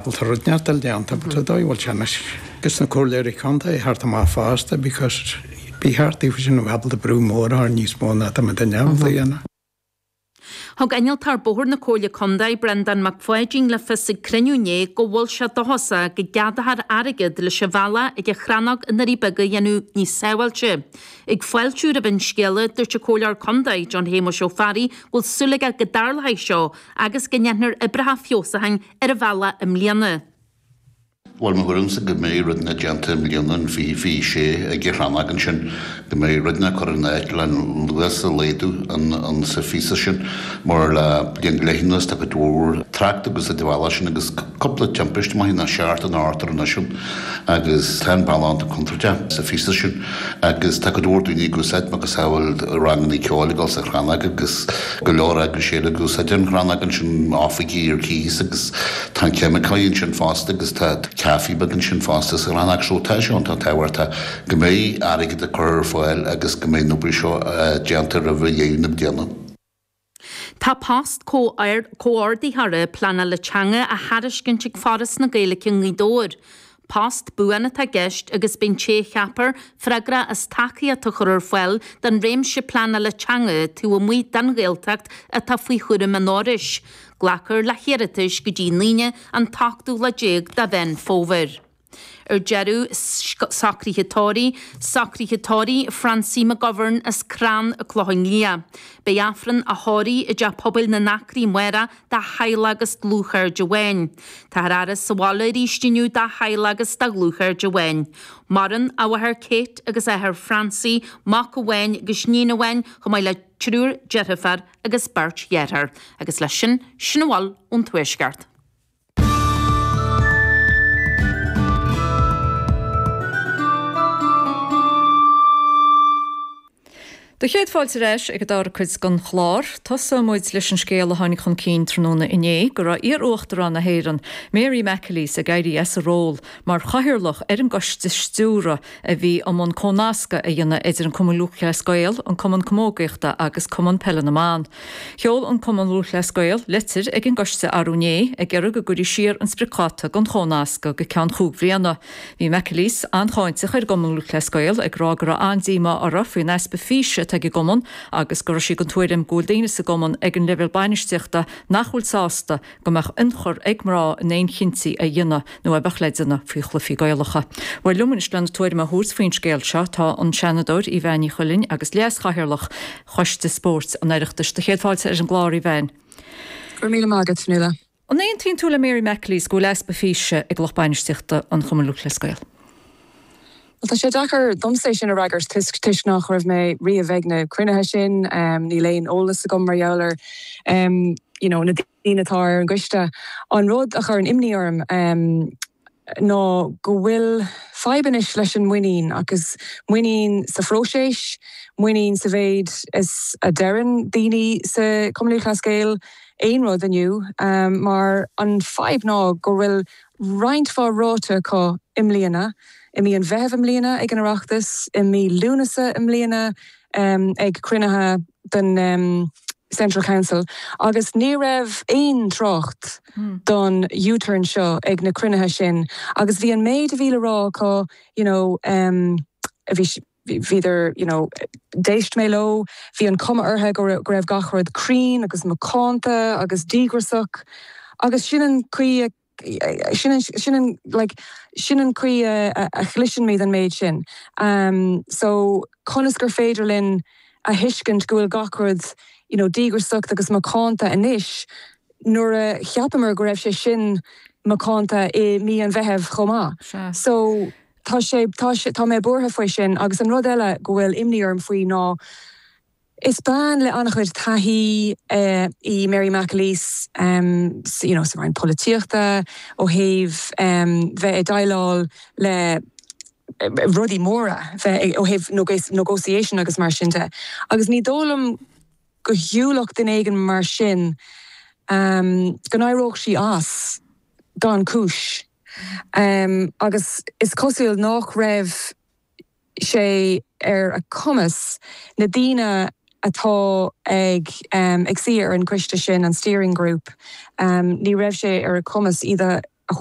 Bhuel, tá rud neart oibre déanta, but tá dóigh a bhfuil sé anois go sna Comhairleoirí Contae thart amach fosta because bí thart taobh sin of able to brú mór thar níos mó ná tá muid in ann a dhéanamh. Thug Innealtóir Bóthair na Comhairle Contae, Breandán Mac Pháidín le fios ag cruinniú inné go bhfuil sé dóchasach go gceadófar airgead leis an bhealach ag an Chrannóg i nDoirí Beaga a dhéanamh níos sábháilte. Ag fáiltiú roimh an scéala, dúirt an Comhairleoir Contae, John Shéamuis Ó Fearraigh go bhfuil súil aige go dtarlóidh seo agus go ndéanfar oibreacha feabhsucháin ar an bhealach i mbliana. Bhuel, mar a thuigimse go mbeidh rudainne déanta i mbliana, an mhí, bhí sé ag an Chrannóg ansin, go mbeidh rudainne curtha in áit le luas a laghdú an an sa phíosa sin mar le bliain go leith anuas tá cuid mhór trácht ag úsáid an bhealaigh sin agus cúpla timpiste maith i ndiaidh tarlú anois ann agus tá an bealach iontach contúirteach sa phíosa sin. agus tá go leor daoine ag úsáid macasamhail ranganna ceoil ag gabháil sa Chrannóg agus go leor eagrais eile ag úsáid an Chrannóg ansin, oifigí ar cíos agus tá an ceimiceoir ansin fosta agus tá caife beag ansin fosta sa Chrannóg so tá sé iontach tábhachtach go mbeidh airgead á chur ar fáil agus go mbeidh an obair seo déanta roimh dheireadh na bliana. Tá post Comhordaitheora Pleanála Teanga á thairiscint ag Foras na Gaeilge i nGaoth Dobhair. Post buan atá i gceist agus beidh an té a cheapfar freagrach as tacaíocht a chur ar fáil don réimse pleanála teanga taobh amuigh den Ghaeltacht atá faoi chúram an Fhorais. Glacfar le hiarratais go dtí an Aoine an t-ochtú lá déag de Mheán Fómhair. Ar deireadh, socruithe tórraimh, socruithe tórraimh, Francie McGovern as Crann Clocha Liath. Beidh Aifreann a thórraimh i dTeach Pobail na nAcraí amárach dá theaghlach agus dlúthchairde amháin. Tá an fhaire sa bhaile arís inniu dá theaghlach agus do dhlúthchairde amháin. Maireann a mháthair Kate agus a athair Francie, mac amháin agus níon amháin chomh maith le triúr deirfiúr agus beirt dhearthár, agus leis sin, sin a bhfuil ón tuaisceart. 'Sé do chéad fáilte ar ais ag an dara cuid den chlár. Tosóidh muid leis an scéal a tháinig chun cinn tráthnóna inné go raibh iar-Uachtarán na hÉireann, Mary McAleese ag éirí as a ról mar chathaoirleach ar an gcoiste stiúrtha a bhí i mbun comhnascadh a dhéanamh idir an Cumann Lúthchleas Gael, an Cumann Camógaíochta agus Cumann Peile na mBan. Sheol an Cumann Lúthchleas Gael litir ag an gcoiste arú inné ag iarraidh go gcuirfí siar an spriocdháta don chomhnascadh go ceann cúig bliana. Bhí McAleese an-cháinteach ar an gCumann Lúthchleas Gael ag rá go raibh an-díomá orthu faoin easpa físe atá ag an gcumann agus go raibh sí den tuairim go bhfuil daoine sa gcumann ag an leibhéal bainistíochta nach bhfuil sásta go mbeadh ionchur ag mná in aon chinntí a dhéanamh nó a bheadh le déanamh faoi chluichí Gaelacha. Bhuel, liom anois lena tuairim a thabhairt faoin scéal seo tá an Seanadóir Evanne Ní Chuilinn agus Leas-Chathaoirleach. Choiste Spóirt an Oireachtais. Tá céad fáilte romhat ar an gclár, a Bhen. Go raibh míle maith agat, Fionnuala. An aontaíonn tú le Mary McAleese go bhfuil easpa físe ag lucht bainistíochta an Chumainn Lúthchleas Gael? Bhuel, tá sé deacair domsa é sin a fhreagairt toisc nach raibh mé riamh ag na cruinnithe sin, níl aon eolas agam mar gheall ar you know na daoine atá ar an gcoiste. An rud a chuireann imní orm, ná go bhfuil fadhb anois leis an muinín, agus muinín sa phróiseas, muinín sa mhéid is a deireann daoine sa Chumann Lúthchleas Gael aon rud inniu, mar an fadhb ná go bhfuil roinnt mhaith ráite acu i mbliana, i mí an Mheithimh i mbliana ag an Oireachtas, i mí Lúnasa i mbliana ag cruinnithe. den Central Council agus ní raibh aon trácht don U-turn seo ag na cruinnithe sin agus bhí an méid a bhí le rá acu you know bhí bhíodar you know d'éist mé leo bhí an cuma orthu go raibh go raibh gach rud cruinn agus macánta agus díograsach agus sin an chaoi a Sin an chaoi a chloiseann muid an méid sin. So conas gur féidir linn a thuiscint go bhfuil gach rud díograiseach agus macánta anois nuair a cheapamar go raibh sé sin macánta i mí an Mheithimh chomh maith? So tá mé buartha faoi sin agus an rud eile go bhfuil imní orm faoi ná Is bean le an-chuid taithí í Mary McAleese sa roinn polaitíochta ó thaobh bheith ag déileáil le rudaí móra ó thaobh negotiation agus mar sin de agus ní dóigh liom go shiúlfadh duine éigin mar sin, go n-éireodh sí as gan cúis agus is cosúil nach raibh. sé ar a cumas na daoine atá ag ag suí ar an gcoiste sin, an steering group, ní raibh sé ar a cumas iad a thabhairt